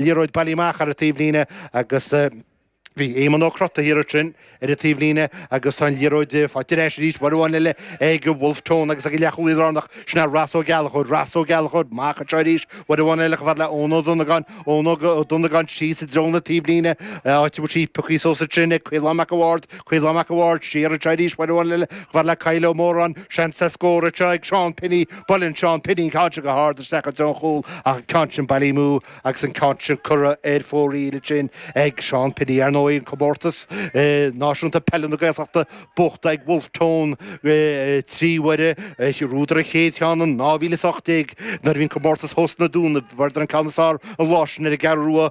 liathróid bailithe amach ar an taobh líne agus bhí Éamonn Ó Crotaigh thiar ansin ar an taobh líne agus tá an liathróid faighte ar ais arís, uair amháin eile ag Bhulf Tón agus ag an leath-chúlaí lárnach sin ea Ross Ó Gallchóir, Ross Ó Gallchóir, amach anseo arís, uair amháin eile chomh fada le Eoin Ó Donnagáin, Eoin Ó Donnagáin síos i dtreo na taobh líne, áit a bhfuil sí pioctha suas ansin ag Caolán Mac a' Bhaird, Caolán Mac a' Bhaird siar anseo arís uair amháin eile chomh fada le Kyle Ó Móráin, seans le scór anseo ag Seán Penny, Buaileann Seán Penny an ceann seo go hard isteach i dtreo an chúil ach an ceann sin bailithe amú agus an ceann sin curtha ar fóraoil ansin ag Seán Penny. Ar ndóigh an comórtas náisiúnta peile na Gaeltachta buachta ag Wolfe Tone trí huaire, bhuadar an chéad cheann in dhá mhíle is ocht déag nuair a bhí an comórtas thuas sna Dúnaibh. Fuaireadar an ceann is fearr an lá sin ar an gCeathrú Rua,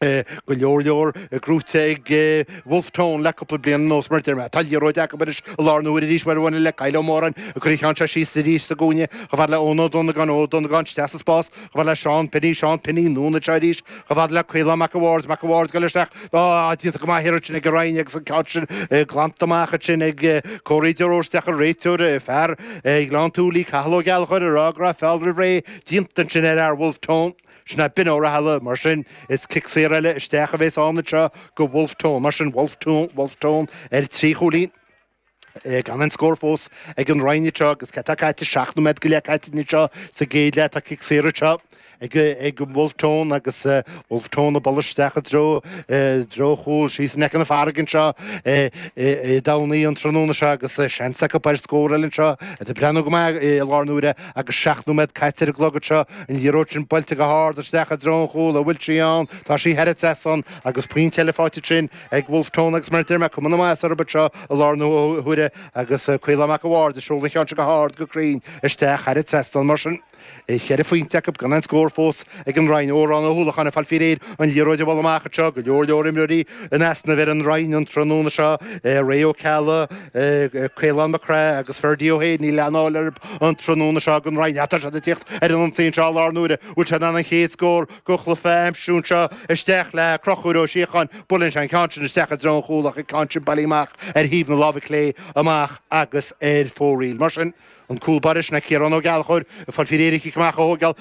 go leor leor gnóthaithe ag Wolfe Tone le cúpla bliain anuas mar deir mé. Tá an liathróid acu anois i láthair na huaire arís chomh fada le Kyle Ó Móráin ag cur an cheann seo síos arís sa gcúinne chomh fada le Eoin Ó Donnagáin, Eoin Ó Donnagáin isteach sa spás chomh fada le Seán Penny, Seán Penny anonn anseo arís chomh fada le Caolán Mac a' Bhaird, Mac a' Bhaird ag goil isteach, á déanta go maith ansin ag an Rinn agus an ceann sin glanta amach ansin ag Corey de Róiste, ach an réiteoir, fear Ghleann tSúilí, Cathal Ó Gallchóir ag rá go raibh feall roimh ré déanta ansin ar fhear Wolfe Tone. Sin é Binn Ó Rathaille, mar sin, is cic saor eile isteach a bhéas ann anseo do Wolfe Tone, mar sin, Wolfe Tone, Wolfe Tone ar trí chúilín, gan aon scór fós ag an Rinn anseo agus cad tá caite, seacht nóiméad go leith caite anseo sa gcéad leath, tá cic saor anseo ag ag Wolfe Tone agus Wolfe Tone ag dul isteach i dtreo i dtreo an chúil síos in aice na farraige anseo i i i dTamhnaigh an tráthnóna seo agus seans acu b'fhéidir scór eile anseo iad ag breathnú go maith i láthair na huaire Agus seacht nóiméad caite ar an gclog anseo, an liathróid sin buailte go hard isteach i dtreo an chúil a bhfuil sí ann, tá sí thar an trasnán agus pointe eile faighte ansin ag Bhulf Tón agus mar a deir mé, cuma na maitheasa orthu seo i láthair na huaire agus Caolán Mac a' Bhaird ag seoladh an cheann seo go hard go cruinn isteach thar an trasnán. Mar sin, cheithre phointe acu gan aon scór fós ag an Rinn. Odhrán Ó hUallacháin ag fáil faoi réir an liathróid a bhualadh amach anseo, go leor leor imreoirí in easnamh ar an Rinn an tráthnóna seo, Ray Ó Ceallaigh, Caolán Mac Craith agus Ferdia Ó hAodha, níl aon fháil orthu. An tráthnóna seo ag an Rinn, tá siad ag tíocht ar an ionsaí anseo i láthair na huaire. Bhfuil sé in ann an chéad scór den chluife a aimsiú anseo isteach le Conchúr Ó Síocháin. Buaileann sé an ceann sin isteach i dtreo an chúl ach an ceann sin bailithe amach ar thaobh na láimhe clé amach agus ar fóraoil. Mar sin, an cúl báire sin acu Ciarán Ó Gallchóir. Ag fáil faoi réir an cic amach a thóigeáil.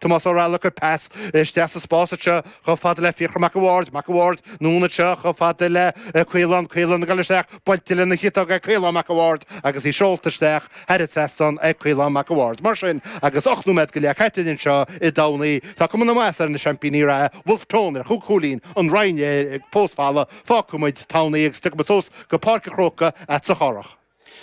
Tomás Ó Raghallaigh ag cur pas isteach sa spás anseo chomh fada le Fiachra Mac a' Bhaird, Mac a' Bhaird, anonn anseo chomh fada le Caolán, Caolán, ag dul isteach buailte lena chiotóg ag Caolán Mac a' Bhaird agus í seolta isteach thar an trasnán ag Caolán Mac a' Bhaird. Mar sin agus ocht nóiméad go leith caite linn anseo i dTamhnaigh, tá cuma na maitheasa ar na seaimpíní reatha, Bhulf Tón, ar chúig chúilín an Rinn fós folamh, fágfaidh muid Tamhnaigh agus tiocfaidh muid suas go Páirc a' Chrócaigh agatsa a Chárthaigh.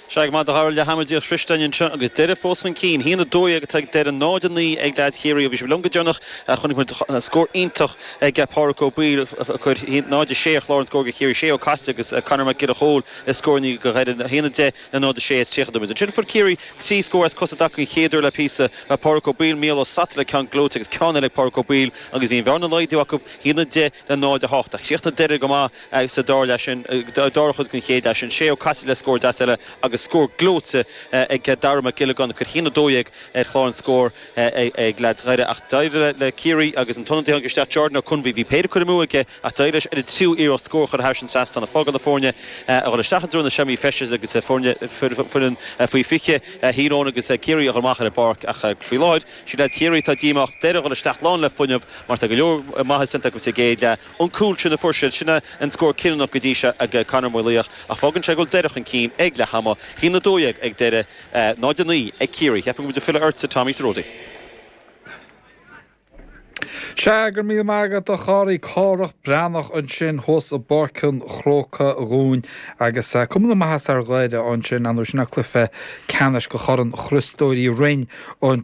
Sea go raibh maith agat Tommy leath ama díreach sroichte againn anseo agus Doire fós chun cinn. 1-12 atá ag Doire, 0-9 ag leaids Chiarraí ó bhí sibh liom go deireanach. Chonaic muid scór iontach ag Pádraic Ó Baoill a chuir 0-6 ar chlár an scóir do Chiarraí. Shay Ó Casaide agus Conor Mac Giolla Chóill le scóranna do Dhoire 1-10 le 0-6 tar éis 30 nóiméad. Ansin fuair Ciarraí trí scór as cosa dtaca an chéad uair le píosa. Pádraic Ó Baoill, Mícheál Ó Sataile ceann gleoite agus ceann eile ag Pádraic Ó Baoill agus bhí an bhearna á laghdú acu 1-10 le 0-8. Chríochnaigh Doire go maith. agus an dara leath sin, an dara cuid den chéad leath sin, Shay Ó Caiside le scór deas eile agus scór gleoite ag Dara Mac Giollagáin, a chuir 1-12 ar chlár an scóir ag leaids Dhoire ach d'éirigh le Ciarraí agus an t-ionadaí a tháinig isteach, Jordan Ó Conbhuí, bhí péire curtha amú aige ach d'éirigh leis ar an tríú iarracht scór a chur thairis an trasnán a fágáil do foirne a dhul isteach i dtreo na seomraí feistis agus foireann faoi 20 Thír Eoghain agus Ciarraí a dhul amach ar an bpáirc ach faoi láthair, sí leaids Chiarraí atá díomách, Doire a dhul isteach lán le fuinneamh mar tá go leor maitheas déanta acu sa gcéad leath. an cúl sin a fuair siad. Sin é an scór cinniúnach go dtí seo ag Conor Ó Maolaodha ach fágann sé go bhfuil Doire chun cinn ag leath ama. 1-12 ag Doire 0-9 ag Ciarraí. Cheapfainn go bhfuil tú ag filleadh ortsa Tommy sa ródaí. Sea, go raibh míle maith agat a Chárthaigh. Cárthach Breathnach ansin thuas i bPáirc an Chrócaigh dhúinn agus cuma na maitheasa ar Dhoire ansin. Ar ndóigh sin é cluiche ceannais do Chorn Chriostóir Uí Rinn an.